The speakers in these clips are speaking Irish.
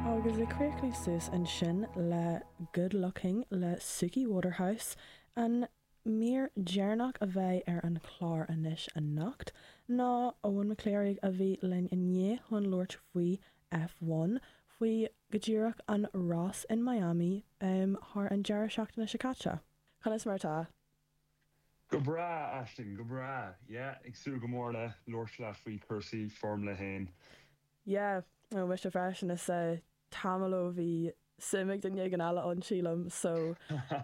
Agus ag críochnú suas ansin le Good Looking le Suki Waterhouse, an mír dheireanach a bheidh ar an chlár anois anocht ná Eoin McClearúgh a bheidh linn inniu chun labhairt faoi F1, faoi go díreach an rás in Miami thar an deireadh seachtaine seo caite. Conas mar atá? Go breá, Aisling, go breá. Yeah, ag súil go mór le labhairt leat faoi chúrsaí Foirmle a hAon. Yeah, no, mise freisin, is ea, tamall ó bhí suim ag duine éigin eile ann, sílim, so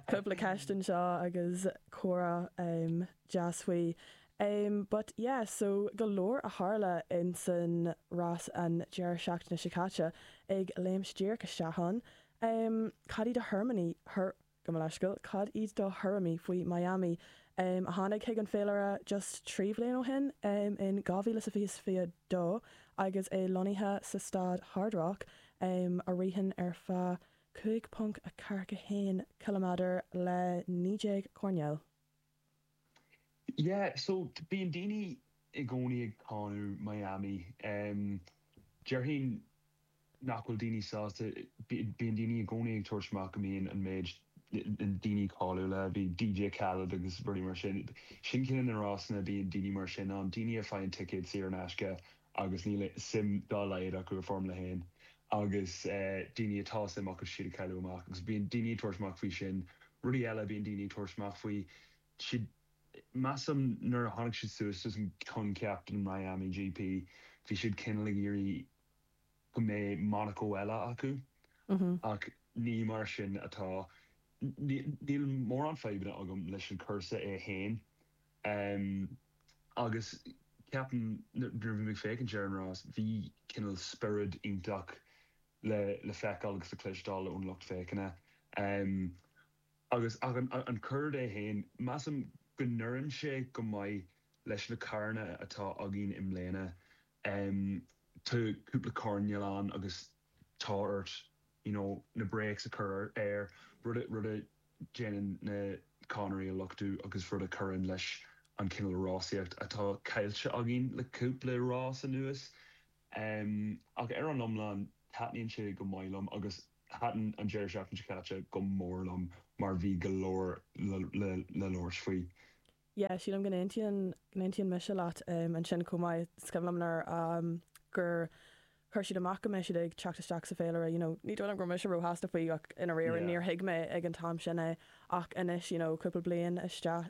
cúpla ceist anseo agus comhrá deas faoi. But yeah, so go leor a tharla in san rás an deireadh seachtaine seo caite, ag léimt díreach isteach ann, cad iad do thuairimí, thur, Gabh mo leithscéal, cad iad do thuairimí faoi Miami? Miami a tháinig chuig an féilire just trí bhliain ó shin, em, in dhá mhíle is a fiche is a fiche dó agus é lonnaithe sa staid Hard Rock, em, a ritheann ar feadh cúig ponc a ceathair a haon ciliméadar le naoi déag coirnéal. Yeah, so bíonn daoine i gcónaí ag cáineadh Miami. Déarfainn nach bhfuil daoine sásta, bíonn daoine i gcónaí ag tabhairt amach go mbíonn an méid daoine cáiliúla, bíonn DJ Khaled agus rudaí mar sin, sin chuig na rásanna, bíonn daoine mar sin ann, daoine a faigheann ticéad saor in aisce agus níl suim dá laghad acu i Foirmle 1, agus daoine atá suim acu siad ag cailleadh amach, agus bíonn daoine ag tabhairt amach faoi sin. Rudaí eile a bíonn daoine ag tabhairt amach faoi, siad, measaim nuair a tháinig siad suas leis an coincheap den Miami GP, bhí siad cineál ag iarraidh go mbeadh Monaco eile acu, ach ní mar sin atá. Níl mórán fadhbanna agam leis an cúrsa é féin, Em, agus ceapaim, nuair a bhí mé ag féachaint ar an rás, bhí cineál spiorad iontach le, le feiceáil agus le cloisteáil ón lucht féachana. Em, agus, ach an, an cuaird é féin, measaim go n-oireann sé go maith leis na caranna atá againn i mbliana. Em, tá cúpla coirnéal ann agus. tá ort you know na brakes a chur ar, rud a, rud a dhéanann na cadhnraí a luchtú agus rud a chuireann leis an chineál rásaíocht atá caillte againn le cúpla rás anuas. Em, ach ar an iomlán, taitníonn sé go maith liom agus thaitin an deireadh seachtaine seo caite go mór liom mar bhí go leor le, le, le labhairt faoi. yeah sílim go n-aontaíonn go n-aontaíonn mise leat ansin chomh maith is cuimhin liom nuair a gur chuir siad amach go mbeidh siad ag teacht isteach sa féilire you know ní dóigh liom go raibh mise róshásta faoi ach i ndáiríre yeah níor thuig mé ag an t-am sin é ach anois you know cúpla bliain isteach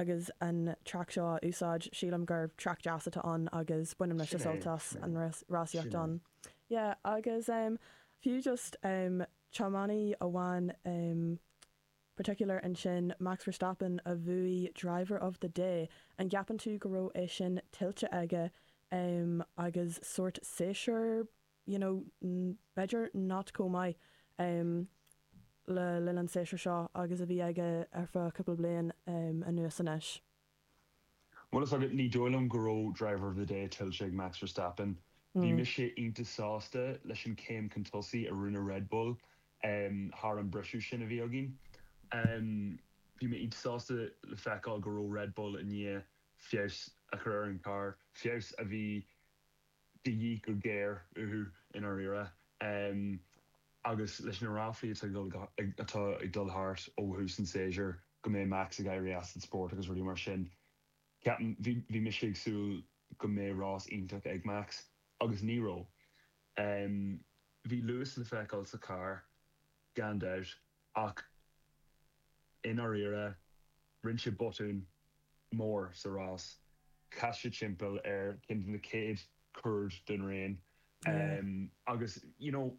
agus an traic seo á úsáid sílim gur traic deas atá ann agus baineann mise sult as an rásaíocht ann yeah agus fiú just tiománaí amháin in particular ansin, Max Verstappen a bhuaigh driver of the day, an gceapann tú go raibh é sin tuillte aige em agus sórt séasúr you know mm b'fhéidir not chomh maith em le linn an tséasúir seo agus a bhí aige ar feadh cúpla bliain em anuas anois. Bhfuil fhios agat, ní dóigh liom go raibh Driver of the Day tuillte ag Max Verstappen. Bhí mise iontach sásta leis an chéim chun tosaigh a rinne Red Bull thar an mbriseadh sin a bhí againn. Bhí mé iontach sásta le feiceáil go raibh Red Bull i ndiaidh feabhas a chur ar an gcarr, feabhas a bhí de dhíth go géar uathu i ndáiríre. Agus leis na ráflaí atá ag dul thart ó thús an tséasúir go mbeidh Max ag éirí as an spórt agus rudaí mar sin, ceapaim, bhí mise ag súil go mbeadh rás iontach ag Max, agus ní raibh. Bhí luas le feiceáil sa charr, gan dabht. Ach i ndáiríre, rinne sé botún mór sa rás. Chas sé timpeall ar cheann de na chéad chuair den raon. Agus you know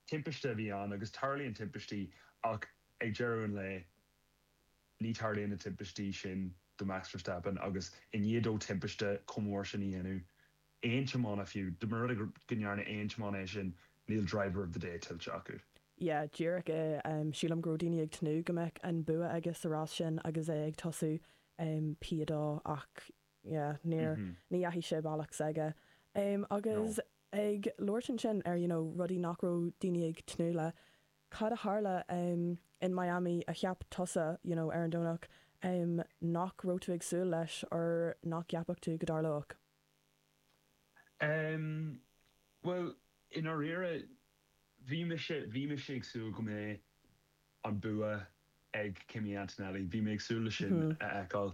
timpiste a bhí ann agus tarlaíonn timpistí ach ag deireadh an lae, ní tarlaíonn na timpistí sin do Max Verstappen agus i ndiaidh dó timpiste chomh mór sin a dhéanamh, aon tiománaí fiú, dá mba rud é go ndearna aon tiománaí é sin, níl driver of the day tuillte acu. yeah díreach é sílim go raibh daoine ag tnúth go mbeadh an bua aige sa rás sin agus é ag tosú P2 ach yeah níor ní dheachaigh sé an bealach s'aige agus ag labhairt ansin ar you know rudaí nach raibh daoine ag tnúth le cad a tharla in Miami a cheap tusa you know ar an Domhnach nach raibh tú ag súil leis or nach gceapfadh tú go dtarlódh? Em. bhuel, i ndáiríre, bhí mise, bhí mise ag súil go mbeadh an bua ag Kimi Antonelli, bhí mé ag súil leis sin a fheiceáil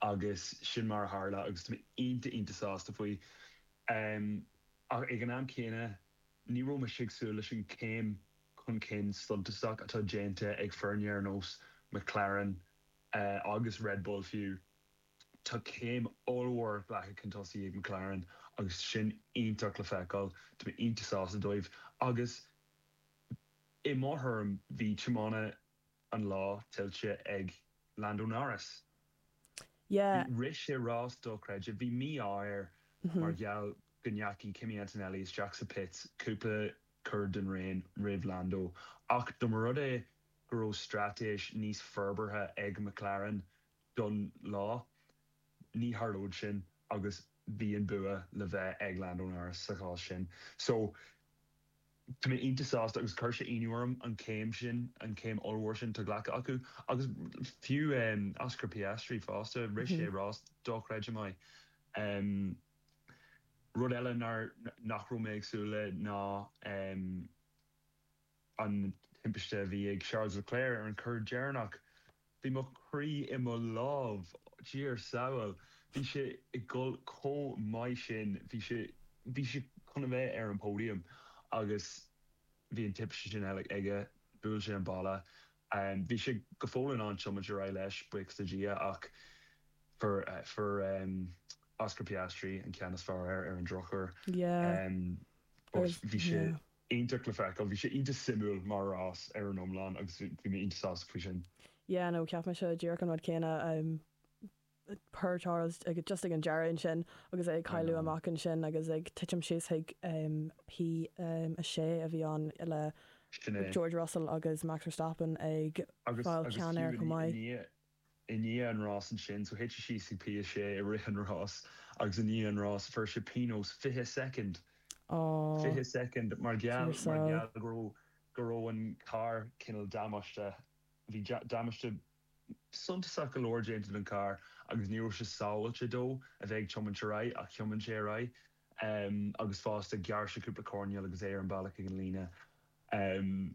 agus sin mar a tharla agus tá mé iontach, iontach sásta faoi. Em. ach ag an am céanna, ní raibh mise ag súil leis an chéim chun cinn suntasach atá déanta ag foirne ar nós McLaren agus Red Bull fiú. Tá céim ollmhór glactha chun tosaigh ag McLaren agus sin iontach le feiceáil. Tá mé iontach sásta dóibh agus i mo thuairim bhí tiománaí an lá tuillte ag Lando Norris. Yeah. Rith sé rás dochreidte. Bhí mí-ádh air mar gheall go ndeachaigh Kimi Antonelli isteach sa pits cúpla cor den raon roimh Lando ach dá mba rud é go raibh straitéis níos forbartha ag McLaren don lá. Ní tharlóidh sin agus bhí an bua le bheith ag Lando Norris sa chás sin. So, tá mé iontach sásta agus chuir sé ionadh orm an céim sin, an céim ollmhór sin atá glactha acu. Agus fiú Oscar Piastri fosta, rith sé rás dochreidte maith. Rud eile nach raibh mé ag súil le ná. an timpiste a bhí ag Charles Leclerc ar an chor deireanach. Bhí mo chroí i mo lámh. Dia ár sábháil. Bhí sé ag dul chomh maith sin. Bhí sé bhí sé chun a bheith ar an póidiam agus bhí an timpiste sin uilig aige. Bhuail sé an balla. Bhí sé go fóill in ann tiomáint ar aghaidh leis, buíochas do Dhia, ach fuair fuair Oscar Piastri an ceann is fearr air ar an drochuair. Yeah. Bhuel, bhí sé. iontach le feiceáil. Bhí sé iontach suimiúil mar rás ar an iomlán agus bhí mé iontach sásta faoi sin. yeah no cheap mise díreach an rud céanna em poor Charles just ag an deireadh ansin agus é ag I cailleadh know. amach ansin agus ag titim síos chuig em P6 a bhí ann le Sin é. George Russell agus Max Verstappen ag Agus fáil agus ceann fiú air i chomh ndiaidh i maith. ndiaidh i ndiaidh an rás ansin, so thit sé síos ag P 6 i rith an rás agus i ndiaidh an rás fuair sé pionós fiche soicind, fiche soicind, mar gheall, mar gheall go raibh, go raibh an carr cineál damáiste, bhí damáiste suntasach go leor déanta don charr agus ní raibh sé sábháilte dó a bheith ag tiomáint ar aghaidh ach thiomáin sé ar aghaidh agus fosta ghearr sé cúpla coirnéal agus é ar an bealach ag an líne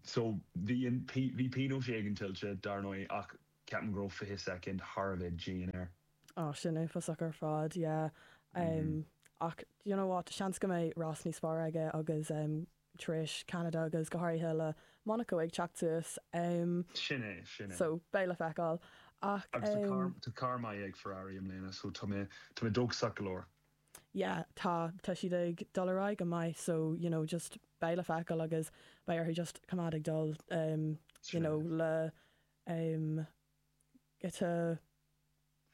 So, bhí an, bhí pionós éigin tuillte, dar ndóigh, ach ceapaim go raibh fiche soicind thar a bheith dian air. Oh, sin uafásach ar fad, yeah. Ach, do you know what, seans go mbeidh rás níos fearr aige agus, tar éis Ceanada agus go háirithe le Monaco ag teacht suas, Sin é, sin é. so, beidh le feiceáil. Ach, Agus tá carr, tá carr maith ag Ferrari i mbliana, so tá mé, tá mé dóchasach go leor. yeah tá, tá siad ag dul ar aghaidh go maith so you know just beidh le feiceáil agus beidh orthu just coimeád ag dul em you True. know le em giota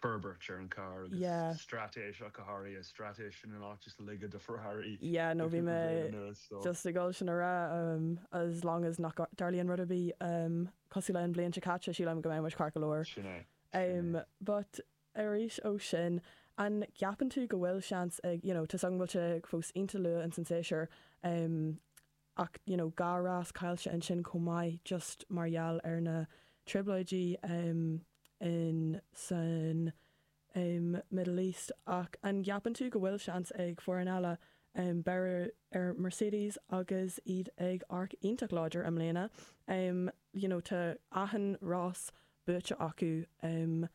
forbairt ar an carr agus yeah straitéis acu go háirithe straitéis sin an áit is laige do Ferrari yeah no le bhí mé cúpla bliain anuas so just ag dul sin a rá em as long as nach dtarlaíonn rud ar bith em cosúil le an bhliain seo caite sílim go mbeidh muid ceart go leor sin é sin em é but arís ó sin, an gceapann tú go bhfuil seans ag, you know, tá a fhios agam go bhfuil sé fós iontach luath ins an séasúr, em, ach, you know, dhá rás caillte ansin chomh maith just mar gheall ar na trioblóidí, em, in san, em, Middle East ach an gceapann tú go bhfuil seans ag foireann eile, em, beir ar Mercedes agus iad ag amharc iontach láidir i mbliana, em, you know, tá achan rás buaite acu, em,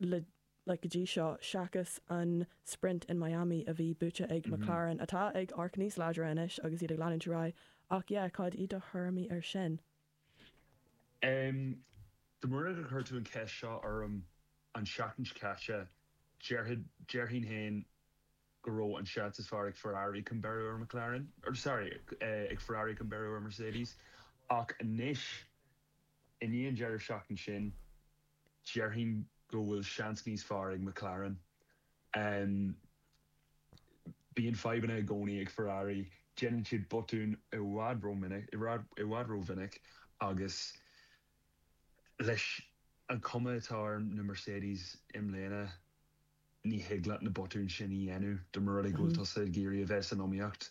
le like go dtí seo, seachas an Sprint in Miami a bhí buaite ag McLaren, atá ag amharc níos láidre anois agus iad ag leanúint ar aghaidh. Ach yeah, cad iad do thuairimí ar sin? Um, dá mba rud é gur chuir tú an cheist seo orm an seachtain seo caite, déarfad, déarfainn féin go raibh an seans is fearr ag Ferrari chun beiriú ar McLaren, or sorry, eh, ag Ferrari chun beiriú ar Mercedes. Ach anois. I ndiaidh an deireadh seachtain sin, déarfainn go bhfuil seans níos fearr ag McLaren. Bíonn fadhbanna i gcónaí ag Ferrari, déanann siad botúin i bhfad rómhinic agus leis an chuma atá ar na Mercedes i mbliana, ní thig leat na botúin sin a dhéanamh, dá mba rud é go bhfuil tusa ag iarraidh a bheith san iomaíocht.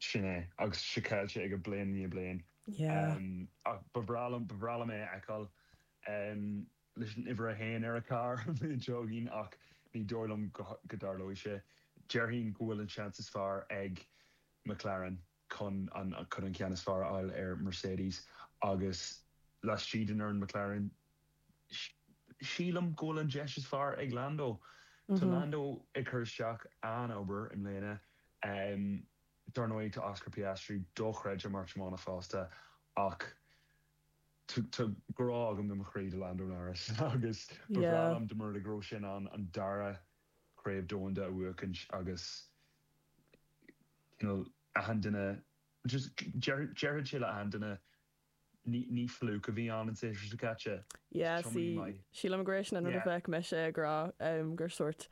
Sin é. Agus seo caillte aige bliain i ndiaidh bliain. Yeah. Ach ba bhreá liom, ba bhreá liom é a fheiceáil leis an uimhir a haon ar a charr, an bhliain seo chugainn, ach ní dóigh liom go dtarlóidh sé. Déarfainn go bhfuil an seans is fearr ag McLaren chun an ceann is fearr a fháil ar Mercedes agus laistigh den fhoireann McLaren, Sílim go bhfuil an deis is fearr ag Lando. Tá Lando ag cur isteach an-obair i mbliana. Dar ndóigh, tá Oscar Piastri dochreidte mar thiománaí fosta ach tá grá agam ó mo chroí do Lando Norris agus ba bhreá liom dá mba rud é go raibh sé in ann an dara Craobh Domhanda a bhuachaint agus cineál achan duine just déarfaidh sé le achan duine Ní fluke a bhí ann an séasúr seo caite. Is Yeah, see, tiománaí maith. sílim gur é sin an rud a Yeah. bheadh mise ag rá, em, gur sórt,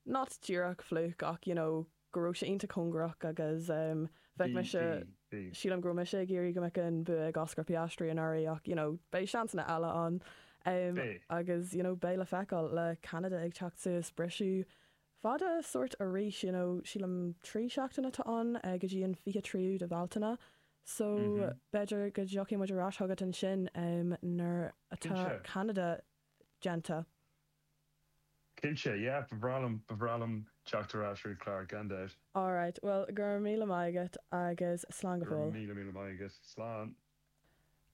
not díreach fluke ach, you know, go raibh sé iontach cóngarach agus, em, bheadh Bhí, mise, bhí, bhí. sílim go raibh mise ag iarraidh go mbeadh an bua ag Oscar Piastri anuraidh ach, you know, beidh seansanna eile ann. Em, Beidh. agus, you know, beidh le feiceáil, le Ceanada ag teacht suas, briseadh fada sórt arís you know sílim trí seachtaine atá ann go dtí an fiche tríú de Bhealtaine so b'fhéidir go dtiocfaidh muid ar ais chugat ansin em nuair atá Cinnte. Ceanada déanta. Cinnte, yeah, ba bhreá liom, ba bhreá liom teacht ar ais chuig clár gan dabht. Alright, bhuel go raibh míle maith agat agus slán go Go raibh fóill. míle, míle maith agat. Slán.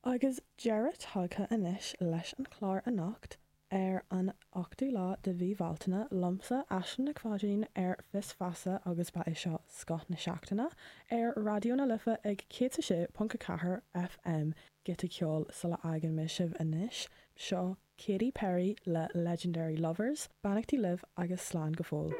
Agus deireadh tagtha anois leis an chlár anocht, ar an 8ú lá de mhí Bhealtaine, liomsa, Aisling Nic Pháidín, ar Fios Feasa, agus ba é seo scoth na seachtaine, ar Raidió na Life ag 106.4 FM, giota ceoil sula bhfágann mé sibh anois, seo Katy Perry le Legendary Lovers, beannachtaí libh agus slán go fóill.